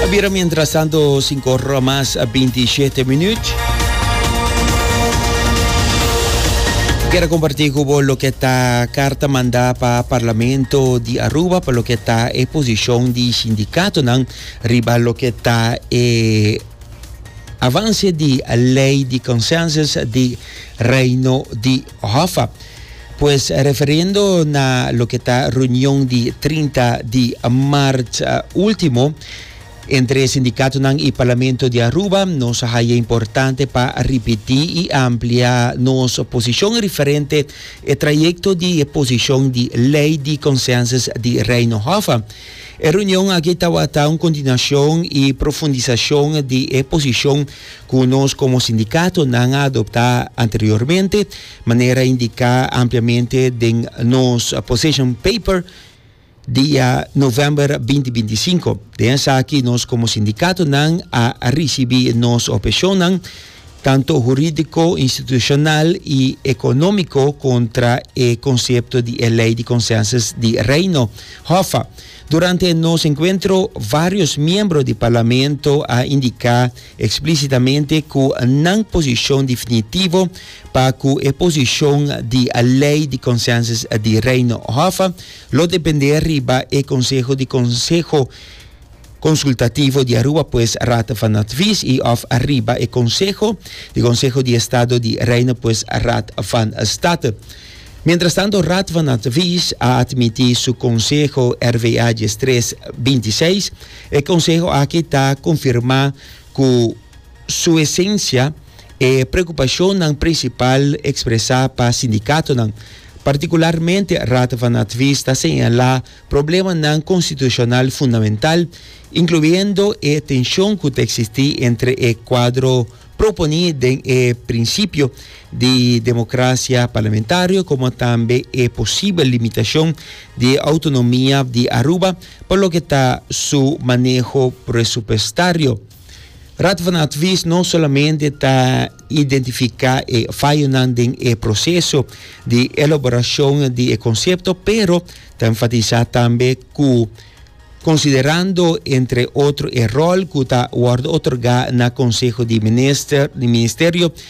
A bira mientras tanto cinco hora mas a binti shete minuut. Kera comparti cu bo loke ta carta manda pa Parlamento di Aruba pa loke ta e posicion di sindicatonan riba loke ta e avance di ley di consensus di Reino di Hoffa, pues referiendo na loke ta reunion di trinta di march ultimo entre sindicatonan y Parlamento di Aruba, nos a haya importante pa ripiti y amplia nos posicion referente e trayecto di e posicion di Ley di Consensus di Reino. Hoffa, e reunion aki tawata un continuacion y profundisacion di e posicion Cu nos como sindicato no a adopta anteriormente, manera indica ampliamente den nos position paper dia november binti binti i sinku. Den esaki nos como sindicatonan a ricibi nos obheccionnan, tanto huridico, institucional y economico, contra e concepto di e Ley di Consensus di Reino, HOFA. Durante nos encuentro varios miembro di Parlamento a indica explicitamente cu nan posicion definitivo pa cu e posicion di Ley di Consensus di Reino Hof lo depende riba e Conseho di Conseho Consultativo di Aruba pues Raad van Advies y of riba e Conseho di Conseho di Estado di Reino pues Raad van State. Mientras tanto Radvan Advies a admiti su conseho RVA diestres binti seis. E conseho aki ta confirma cu su esencia e preocupacionnan principal expresa pa sindicatonan. Particularmente Radvan Advies ta señala problemanan constitucional fundamental, incluyendo e tension cu ta existi entre e cuadro Proponí den e prinsipio di democracia parlamentario como tambe e posibel limitacion di autonomia di Aruba pa loke ta su maneho presupuestario. Raad van Advies no solamente ta identifica e fayonan den e proceso di elaboracion di e concepto pero ta enfatisa tambe cu Considerando, entre otro, e rol cu ta wordo otorga na Conseho di Minister, di Ministerio,